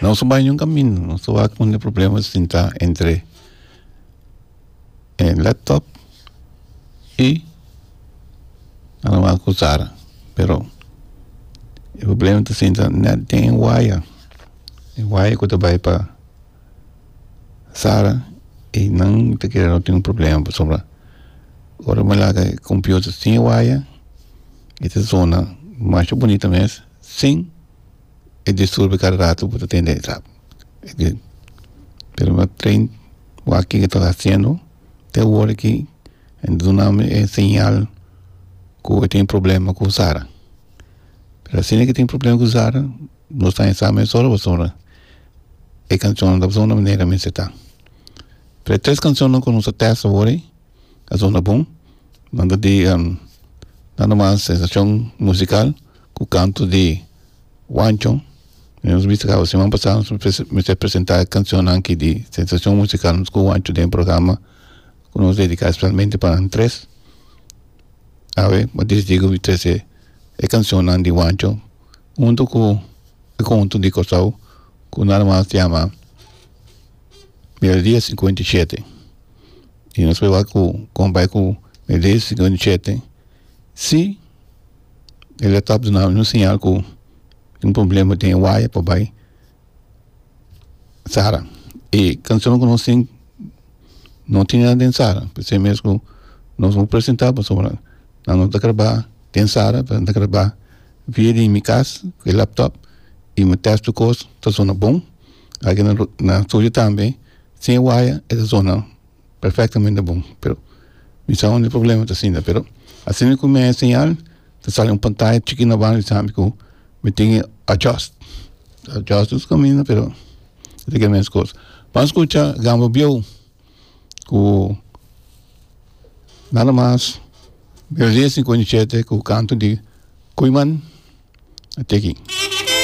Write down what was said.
Nos ta bai ningún camino, nos ta wak un problema sinta entre e laptop y Alamaco Sara. Pero e problema ta sinta net den e waya, e waya cu ta bai pa Sara y nan ta kere no tin un problema pasobra ora bo laga e computer sin e waya e ta sona masha bunita mes Sin e disturbio cada rato bo ta tende esap pero tren wak kico ta haciendo te awor aki en dunami e señal cu e tin problema cu sara pero asina e tin problema cu sara no esta en sa mes ora pasobra e cancion ta pasobra na manera mester ta pero e tres cancionan cu nos ta test awori ta pasobra bon nan ta di nan namas sensacion musical. ku kanto di Wanchon. Komo nos bisa kaba siman pasá nos mester presentá e kanshonnan aki di Sensashon Musikal Nos ku Wancho den e programa ku nos dediká spesialmente pa nan tres. Awe bo a disidí ku mi trese e kanshonnan di Wancho huntu ku e konto di Kòrsou ku nada mas yama Melodía sinkuenta i shete. I nos proba ku kon bai ku Melodía sinkuenta i shete Sí, e laptop ta duna un señal ku tin un problema den e waya pa bai sara. E cancionnan ku nos tin no tin nada den sara p'esei mes ku nos por presenta pasobra nan no ta graba den sara nan ta graba via di mi kas ku e laptop i mi test di kos ta sona bon, na studio tambe sin e waya e ta sona perfectamente bon pero mi sa unda e problema ta asina pero asina ku mi a enseñal ta sali un pantaya chikit na banda mi sabi ku mi tin ke adjust adjust dus kaminda pero mi tin ke mes kos ban skucha gamba bieu ku nada mas melodi e sinkonichete ku kantu di koeiman a teken.